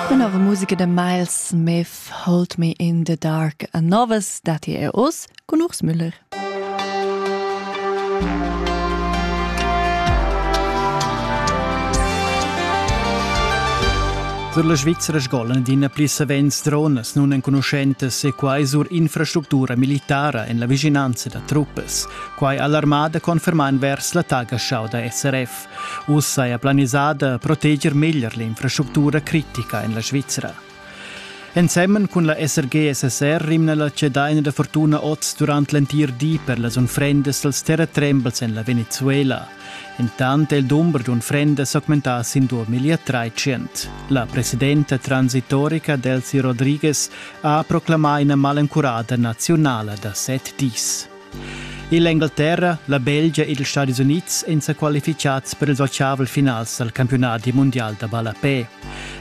Tenor musica da Miles Smith Hold Me in the Dark a Novas datti er oz cun Urs Müller. Sur la Svizzera sgolan adina pli savens dronas nunenconuschentas e quai sur infrastructura militara en la vischinanza da truppas. Quai ha l'armada confermà envers l'attacca da SRF. Uss saja planisà da proteger meglier l'infrastructura critica en la Svizra. Ensemen cun la SRG-SSR rimna la cedaina da fortuna oz durant l'entir di per las unfrendas dals terratrembels en la Venezuela. Intant è il dumber d'unfrendas augmentà sin 2013. La presidenta transitorica Delcy Rodriguez ha proclamà ina malencurada nazionala da set dis. Ill'Engalterra, la Belgia ed ils Stadis Unids èn sa qualifichads per ils otgavel finals dal campiunadi mundial da ballapè.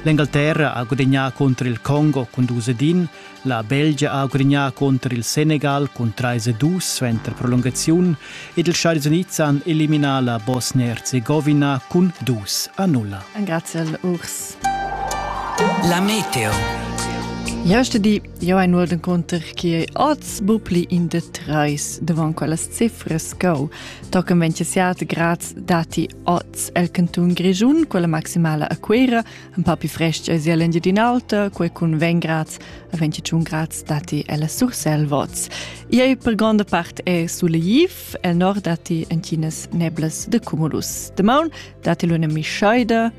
L'Engalterra ha gudagnà cunter il Congo cun dus ed in, la Belgia ha gudagnà cunter il Senegal cun trais e dus suenter prolungaziun ed ils Stadis Unids han eliminà la Bosnia-Herzegowina cun dus a nulla. Engraziel Urs. La Meteo. Ja ste die Io ein ual encunter che oz bu pli in de treis davon quellas cifras co tocan 27 grads dati oz el canton Grischun quella maximala a Quera un pa più fresca sia l'Engiadin'Alta quei cun 20 grads a 21 grads dati ella Surselvoz. Ia per gonda part è suleiv el nord dati en Chinas neblas de cumulus. Demaun dati l'una mischaida